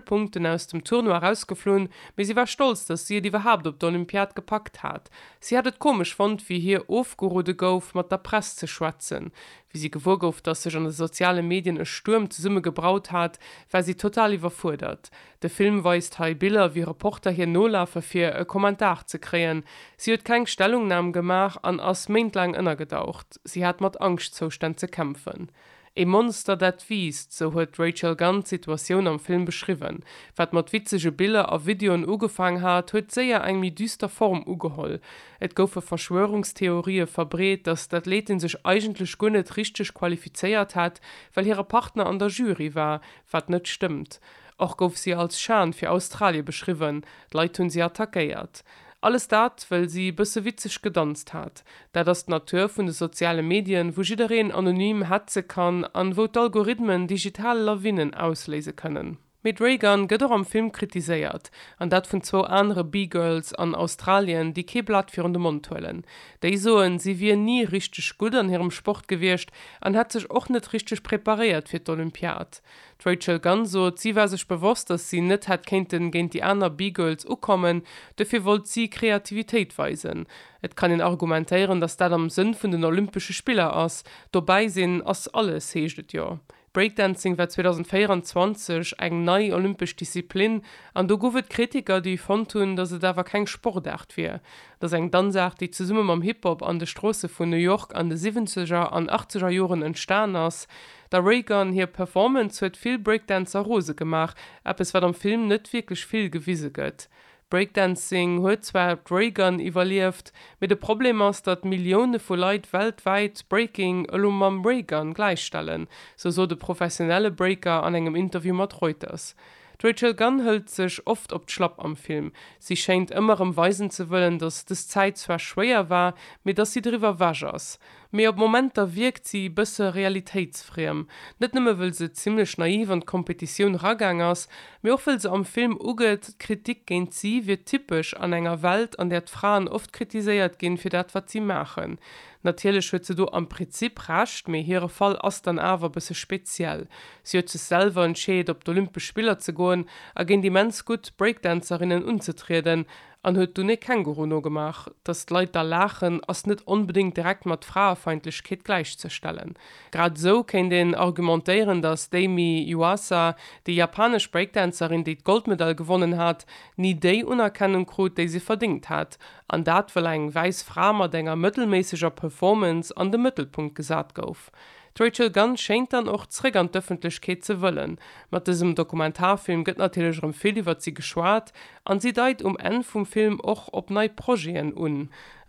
Punkten aus dem Tournoi rausgeflunn, mee si war stolz, datt si et iwwerhaapt op d'Olympiad gepackt hat. Si hat et komesch fonnt, wéi hir ofgeroode gouf, mat der Press ze schwätzen. Wéi si gewuer gouf, datt sech an de soziale Medien e Stuerm zesumme gebraut hat, war si total iwwerfuerdert. De Film weist hei Biller, wéi Reporter hir nolafe fir e Kommentar ze kréien. Si huet keng Stellungnam gemaach an ass méintlaang ënnergedaucht. Si hat mat Angschtzoustänn ze kämpfen. Ee Monster, dat wiisst, sou huet d'Rachel Gunn d'Situatioun am Film beschriwwen. Wat mat witzege Biller a Videoen ugefaang hat, huet séier eng méi düster Form ugeholl. Et goufe Verschwörungstheorië verbreet, datt d'Athletin sech eigentlech guer net richteg qualifizéiert hätt, well hire Partner an der Jury war, wat net stëmmt. Och gouf si als Schan fir Australie beschriwwen, d'Leit hunn si attackéiert. Alles dat, wëll si e bësse witzeg gedanzt hat. Dat ass d'Natur vun de soziale Medien, wou jiddereen anonym hetze kann an wou d'Algorithmen digital Lawinnen ausléise kënnen. Mee d'Raygun gëtt och am Film kritiséiert, an dat vun zwou anere B-Girls an Australien, déi kee Blat virun de Mond huelen. Déi soen, si wier ni richteg gutt an hirem Sport gewiescht an hätt sech och net richteg preparéiert fir d'Olympiad. D'Rachel Gunn sot, si war sech bewosst, datt si net hätt kéinten géint déi aner B-Girls ukommen, dofir wollt si Kreativitéit weisen. Et kann een argumentéieren, datt dat am Sënn vun den Olympesche Spiller ass, dobäi sinn ass alles, heescht et jo. Breakdancing war 2024 eng nei olympesch Disziplin an do guff et Kritiker, déi fonnt hunn, datt et awer keng Sportaart wier. Et ass eng Danzaart, déi zesumme mam Hip-Hop an de Stroosse vun New York an de Siwwenzeger an Achtzeger Joren entstanen ass. Der Raygun hir Performance huet vill Breakdancer rose gemaach, eppes wat am Film net wierklech vill gewise gëtt. Breakdancing huet zwar d'Raygun iwwerlieft, mee de Problem ass, datt Millioune vu Leit weltwäit Breaking elo mam Raygun gläichstellen, sou sot e professionelle Breaker an engem Interview mat Reuters. D'Rachel Gunn hëlt sech oft op d'Schlapp am Film. Si schéint ëmmer erëm weisen ze wëllen, datt dës Zäit zwar schwéier war, mee datt si driwwer ewech ass. Mee op Momenter wierkt si e bësse realitéitsfriem. Net nëmme wëll se zimmlech naiv an d'Kompetitioun ragaang ass, mee och wëll se am Film ugëtt, d'Kritik géint si wier typesch an enger Welt, an där d'Fraen oft kritiséiert ginn, fir dat wat si maachen. Natierlech huet se do am Prinzip Recht, mee hire Fall ass dann awer e bësse speziell. Si huet sech selwer entscheet op d'Olympesch Spiller ze goen a géint immens gutt Breakdancerinnen unzetrieden. an huet dunn ee Känguru nogemaach. Datt d'Leit da laachen, ass net onbedéngt direkt mat Fraefeindlechkeet gläichzestellen. Grad esou kéint een argumentéieren, datt d'Amy Yuasa, déi japanesch Breakdancerin, déi d'Goldmedail gewonnen hat, ni déi Unerkennung krut, déi se verdéngt hätt, an dat, well eng wäiss Fra mat enger mëttelméisseger Performance an de Mëttelpunkt gesat gouf. D'Rachel Gunn schéint dann och zréck an d'Ëffentlechkeet ze wëllen. Mat dësem Dokumentarfilm gëtt natierlech erëm vill iwwert si geschwat an si deit um Enn vum Film och op nei Projeten un.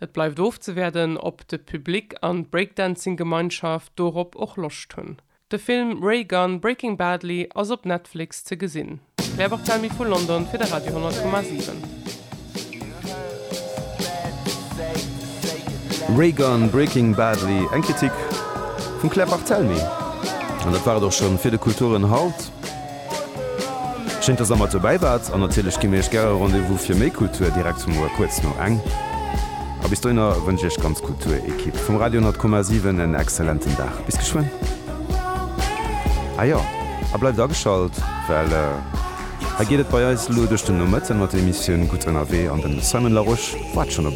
Et bleift ofzewäerden, ob de Public an d'Breakdancing-Gemeinschaft dorop och Loscht hunn. De Film Ray Gunn, Breaking Badly ass op Netflix ze gesinn. Claire Barthelmy vu London fir de Radio 10,7. Ray Gun, Breaking Badly, eng Kritik vum Claire Barthelmy. An dat war et och schonn fir de Kulturen haut. Schéin, dass der mat dobäi waart an natierlech gi mir iech gäre Rendez-vous fir méi Kultur direkt zum Uer kuerz no eng. A bis dohinner wënsch iech ganz Kulturekipp vum Radio 10,7 en exzellenten Dag. Bis geschwënn. Ah jo, a bleift ageschalt, well hei geet et bei eis elo duerch den Nomëtten mat der Emissioun Gutt Ënnerwee an den Simon Larosche waart schonn op.